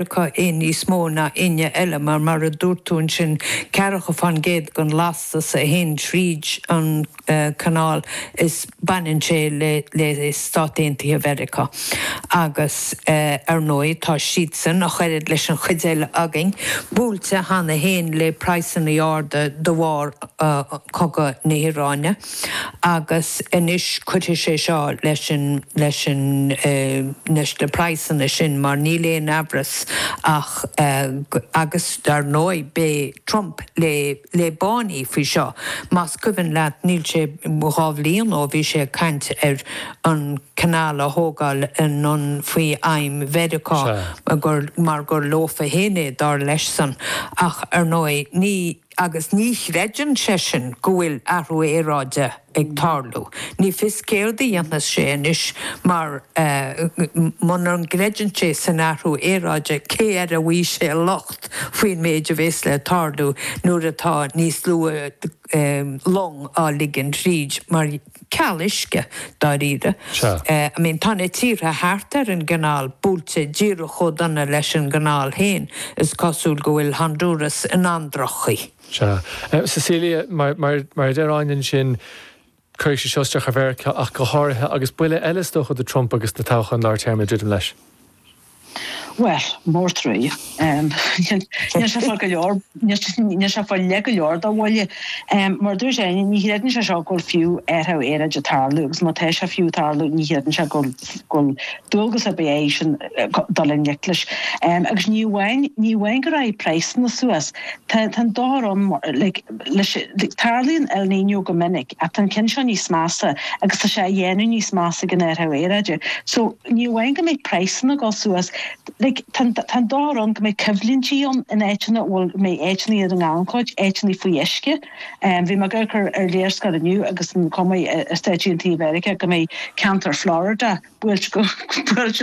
acu é níos mó ná éinne eile, mar, mar a dúirt tú ansin, ceathracha fán gcéad den lastas a théann tríd an gCanál, is baineann sé le Stáit Aontaithe Mheiriceá. Agus, ar ndóigh, tá siadsan, ach oiread leis an chuid eile againn, buailte cheana féin le praghsanna arda de bharr chogadh na hIaráine. agus anois cuirfidh sé seo leis an, leis an, leis na praghsanna sin mar níl aon amhras ach go, agus dar ndóigh beidh Trump le, le báiní faoi seo. Más cuimhin leat níl sé, dhá bhliain ó bhí sé ag caint ar an canal a thógáil anonn faoi réim Mheiriceá gur, mar gur leofa fhéin é dar leis-san ach ar ndóigh ní, agus ní chreideann seisean go bhfuil athrú aeráide ag tarlú. Ní fios céard a dhéanfas sé anois, mar muna gcreideann sé san athrú aeráide, cé air a mbeidh sé an locht faoin méid a bheas le tarlú nuair atá níos lú long á ligean thríd mar. ceal uisce, dáiríre. Sea. I mean, tá na tíortha thart ar an gCanáil buailte díreach chomh dona leis an gCanáil féin. Is cosúil go bhfuil Honduras in an-drochchaoi. Sea. Cecilia, mar a deir Áine ansin, cuirfidh sé seo isteach ar Mheiriceá ach go háirithe, agus buille eile is dócha do Trump agus na toghcháin lár téarma ag druidim leis. Bhuel, mar a deir tú. Níl sé fágtha go leor, níl sé fágtha le go leor dá bhuille. Mar a dúirt Áine, ní chreideann sé seo go bhfuil fiú athrú aeráide ag tarlú agus má tá sé fiú ag tarlú ní chreideann sé gur dualgas ar bith airsean dul i ngleic leis. Agus ní amháin go rachaidh praghsanna suas, tá an dochar ann leis. Tarlaíonn El Niño go minic ach tá an ceann seo níos measa agus tá sé á dhéanamh níos measa ag an athrú aeráide. Ní amháin go mbeidh praghsanna ag dul suas, tá an tuar ann, go mbeidh coimhlintí ann in áiteanna a bhfuil, mbeidh áiteannaí ar an ngannchuid, áiteannaí faoi uisce. Bhí mé ag amharc ar léarscáil inniu agus an chuma i Stáit Aontaithe Mheiriceá go mbeidh ceantar Florida buailte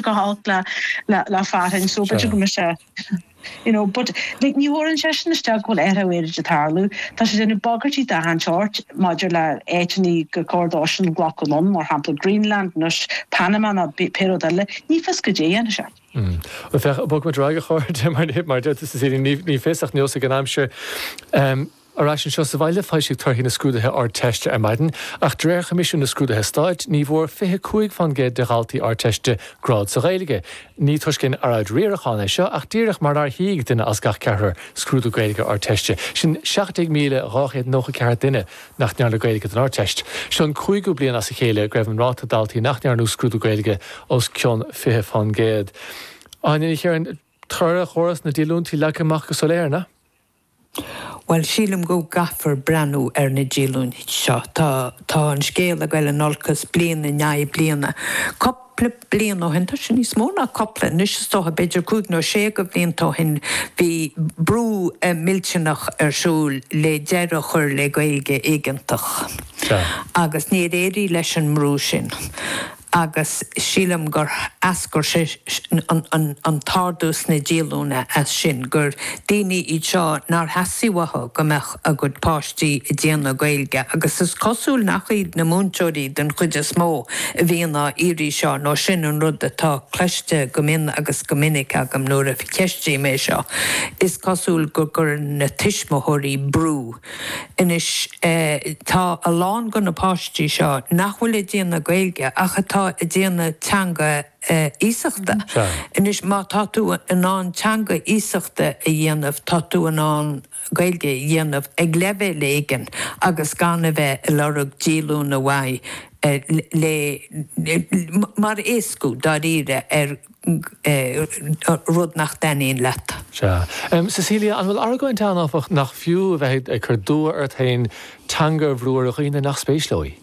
go holc le fearthainn. So b'fhéidir go mbeidh sé. you know, but ní thabharfaidh seisean isteach go bhfuil athrú aeráide ag tarlú. Tá sé ag déanamh bagairtí d'achan seort maidir le áiteannaí gur cóir dóibhsean glacadh anonn, mar shampla Greenland nó Panama nó pé rud eile. Ní fios goidé a dhéanfaidh sé. Bhuel, féach, bogfaidh muid ar aghaidh, a chairde, mar, mar a deirtear sa Saoithín, ní, ní fios ach neosfaidh an aimsir. Ar ais anseo sa bhaile, foilsíodh torthaí na scrúduithe Ardteiste ar maidin, ach de réir Choimisiún na Scrúduithe Stáit, ní bhfuair 25 fán gcéad de dhaltaí Ardteiste grád sa Ghaeilge. Ní toisc aon earráid riaracháin é seo, ach díreach mar nár shuigh duine as gach ceathrar scrúdú Gaeilge Ardteiste, sin 17,294 duine nach ndearna Gaeilge don Ardteist. Seo an cúigiú bliain as a chéile go raibh an ráta daltaí nach ndearna scrúdú Gaeilge os cionn 20 fán gcéad. Áine Ní Chiaráin, Toradh chóras na díolúintí leagtha amach go soiléir, an ea? Bhuel, sílim go gcaithfear breathnú ar na díolúintí seo. Tá, tá an scéal ag dul in olcas bliain i ndiaidh bliana. Cupla bliain ó shin, tá sé níos mó ná cupla anois is dócha, b'fhéidir cúig nó sé de bhlianta ó shin, bhí brú millteanach ar siúl le deireadh a chur le Gaeilge éigeantach. Agus níor éirigh leis an mbrú sin. agus sílim gur eascair sé an t-ardú sna díolúine as sin, gur daoine iad seo nár theastaigh uathu go mbeadh a gcuid páistí ag déanamh Gaeilge agus is cosúil nach iad na múinteoirí den chuid is mó a bhíonn á iarraidh seo nó sin an rud atá cloiste go mion agus go minic agam nuair a cheistigh mé seo. Is cosúil go gcuireann na tuismitheoirí brú. Anois, tá a lán de na páistí seo nach bhfuil ag déanamh Gaeilge ach atá ag déanamh teanga iasachta. Anois, má tá tú in ann teanga iasachta a dhéanamh, tá tú in ann Gaeilge a dhéanamh ag leibhéal éigin agus gan a bheith ag lorg díolúine uaidh mar éascú, dáiríre, ar. rud nach dtaitníonn leat. Sea. Cecilia, an bhfuil argóint ann, áfach, nach fiú a bheith ag cur dua ort féin teanga a bhrú ar dhaoine nach spéis leo í?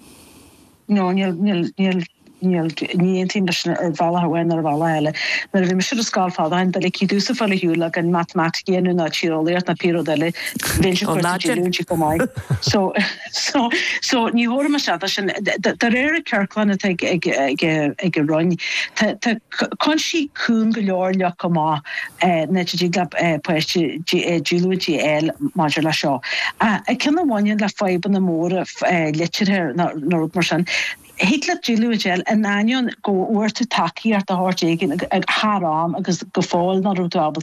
Nó níl, níl, ní aontaím leis sin ar bhealach amháin nó ar bhealach eile. Nuair a bhí mise ar an scoil fadó tháinig duine cead domhsa fáil ar shiúl gan matamaitic a dhéanamh ná tíreolaíocht ná pé rud eile, bhí an sin cursa díriú, an sin chomh maith. So. So, so ní thabharfaimis fhad sin. De réir an ciorcláin atá ag an Roinn, tá cúinsí cúng go leor leagtha amach ina dtig le páiste díolúint a fháil maidir le seo. Ach cinn a bhaineann le fadhbanna móra liteartha nó rud mar sin, thig leat díolúint a fháil in ainneoin go bhfuair tú tacaíocht de shórt éigin thar am agus go fóill nach raibh tú ábalta